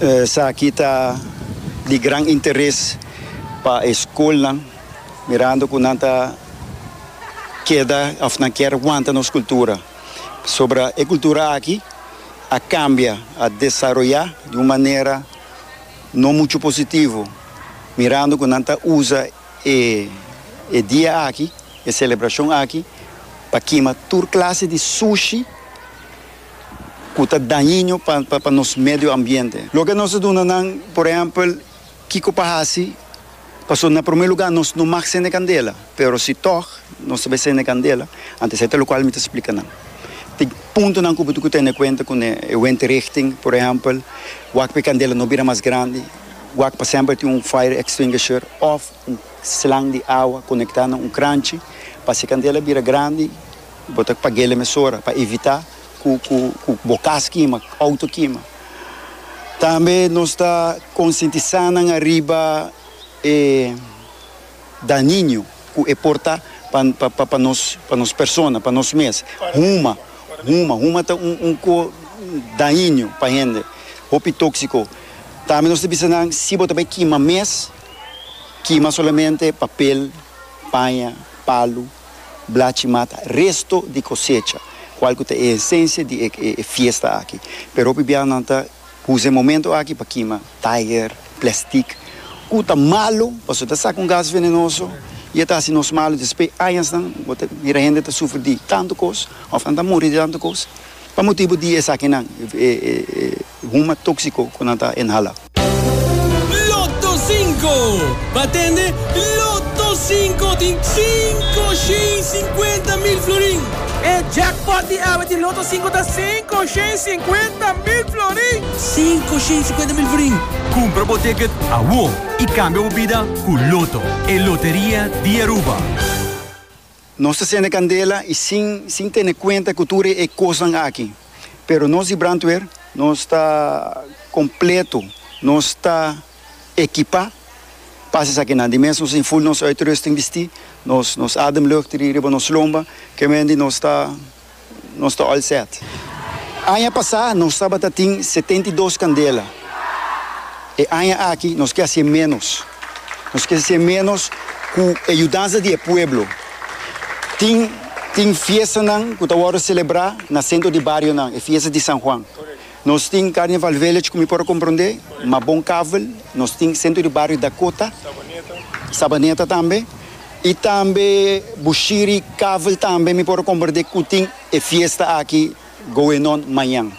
Esaki ta di gran interes pa e skolnan mirando ku nan ta keda òf nan kier wanta nos kultura. Pasobra e kultura aki a kambia, a desaroyá di un manera no muchu positivo mirando ku nan ta usa e dia aki, e selebrashon aki pa kima tur klase di sushi. ku ta dañino pa nos medio ambiente. Loke nos ta duna nan, por ehèmpel, kiko pa hasi? Pasobra na promé lugá nos no mag sende kandela, pero si tòg nos ta bai sende kandela, anto esei ta lokual mi ta splika nan. Tin puntonan ku bo debe tene kuenta ku e windrichting, por ehèmpel, wak pa e kandela no bira mas grandi, wak pa semper tin un fire extinguisher òf un slang di awa konektá na un kranchi pa si e kandela bira grandi, Bo ta pag'é lemesora pa evitá ku ku bo kas kima, ku outo kima. Tambe nos ta konsientisá nan ariba e dañiño ku e por ta pa pa pa nos pa nos persona, pa nos mes. Huma, huma, huma ta un un ko dañiño pa hende, hopi tóksiko. Tambe nos ta bisa nan si bo ta bai kima mes, kima solamente papel, paña, palu. Blachi mata resto di cosecha, cual cu ta e esencia di e fiesta aki. Pero hopi biaha nan ta uza e momento aki pa kima taier, plastic, cu ta malo pasobra ta saca un gas venenoso y e ta haci nos malo. Despues añasnan bo ta mira hende ta sufri di tanto cos of nan ta muri di tanto cos pa motibu di esakinan, E guma tóksiko ku nan ta inhala. Lotto Sinko! Ba tende Lotto Sinko di sinku shen i sinkuenta mil florin! E jackpot di awe di Lotto Sinko ta sinku shen i sinkuenta mil florin! Sinku shen i sinkuenta mil florin! Kumpra bo ticket awor i kambia bo bida ku Lotto, e loteria di Aruba! Nos ta sende kandela i sin sin tene kuenta ku tur e kosnan aki. Pero nos di brandweer, nos ta kompleto, nos ta ekipá pa hasi esakinan. Di mes nos tin ful nos uitrusting bistí, nos nos ademlucht riba nos lomba, kemendi nos ta nos ta all set. Aña pasá nos tabata tin setenta i dos kandela. E aña aki nos ke hasié ménos. Nos ke hasié ménos ku e yudansa di e pueblo. Tin tin fiestanan ku ta wòrdu selebrá na sentro di barionan, e fiesta di San Juan. Nos tin Carnival Village ku mi por a komprondé, ma bon kavel, nos tin Sentro di Bario Dakota, Sabaneta tambe, i tambe Bushiri kavel tambe mi por a komprondé ku tin e fiesta aki going on mañan.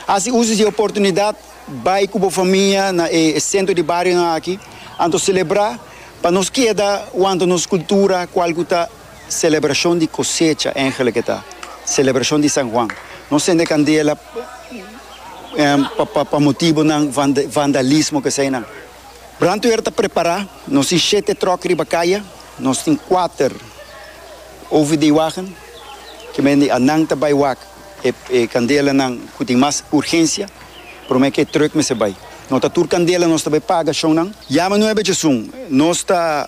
Hasi uso di e oportunidat bai ku bo famia na e Sentro di Barionan aki, anto selebrá pa nos keda wanta nos kultura kual ku ta Celebracion di cosecha engelek e ta celebracion di San Juan nos ende candela pa pa motibonan vandalismo kesey nan brandweer ta prepara nos tin shete truck riba caya nos tin cuater OVD wagen ke men di anan ta bay wak e e candela nan cu tin mas urgencia prome ke truck mester bay no ta tur candela nos ta bay paga shonnan yama nuebe chesun nos ta.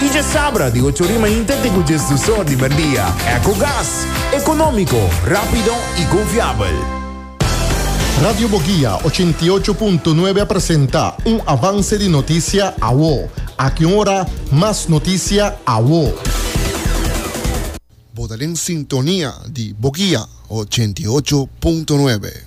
Y dje sabra di ocho ri mainta te cu dje sdusor di merdia. Ecogas, economico, rapido y confiabel. Radio Boguia ochenta i ocho punto nuebe a presenta un avance di noticia awo. Aki un ora mas noticia awo. Bo ta den sintonia di Boguia ochenta i ocho punto nuebe.